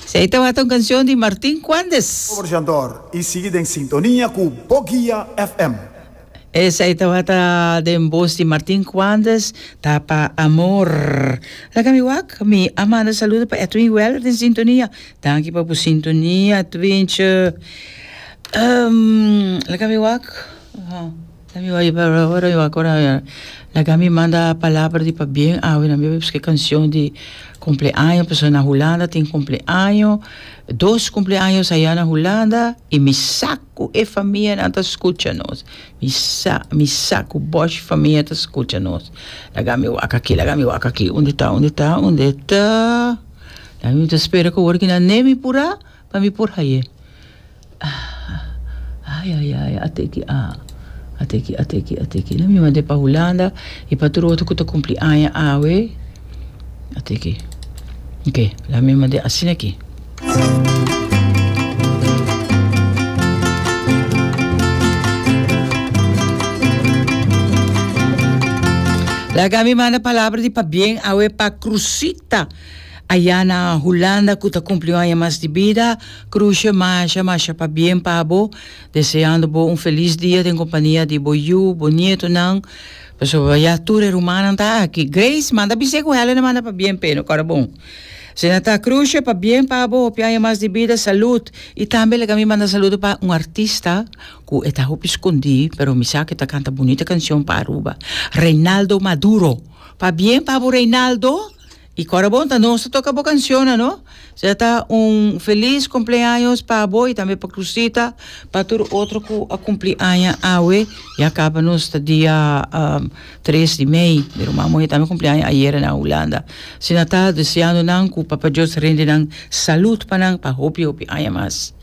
Sei tabata un cancion di Martin Cuandes. Overjador y sigui den sintonia cu Bo Guia FM. Esey tabata den bos di Martin Cuandes, Ta pa Amor. Laga mi wak, mi a manda saludo pa Edwin Weller den sintonia. Danki pa bu sintonia, Edwintje. Um, laga mi wak. Laga mi manda palabra di pabien awe nan biba busca e cancion di cumpleaño pasobra na Hulanda tin cumpleaño dos cumpleaño aya na Hulanda y mi sa cu e famia nan ta scucha nos mi sa mi sa cu bosh famia ta scucha nos laga mi wak aki laga mi wak aki unde ta unde ta unde ta laga mi ta spera cu ora ki nan nemi pura Pa mi por haye. Ah ah ay ay ay ate ki ah ate ki ate ki ate ki no mi mande pa Hulanda y pa tur otro cu ta cumpli aña awe ate ki ok laga mi mande asina ki. Laga mi manda palabra di pabien awe pa Cruzita. Ayá na Hulanda cu ta cumpli un aña mas di bida, Cruce masha masha pa bien pa bo, deseando bo un feliz dia den compania di bo yu, bo nietonan, pasobra ya tur e rumannan ta aki. Grace, manda bisé cu Helen a manda pa bien p'e no cora bon. Asina ta, Cruce, pa bien pa bo, hopi aña mas di bida, salud. Y tambe like a mi manda saludo pa un artista cu e ta hopi scondi, pero mi sa cu e ta canta bunita cancion pa Aruba, Reynaldo Maduro. Pa bien pa bo Reynaldo. Y Corabon ta nos ta toca bo canciona no. Sea ta un feliz cumpleaños pa bo y tambe pa Cruzita, pa tur otro cu a cumpli aña awe. Ya caba nos ta dia um, tres di mei. Mi ruma moe tambe cumpli aña ayer na Hulanda. Si na ta deseando nan cu Papa Dios rindi nan salud pa nan pa hopi hopi aña mas.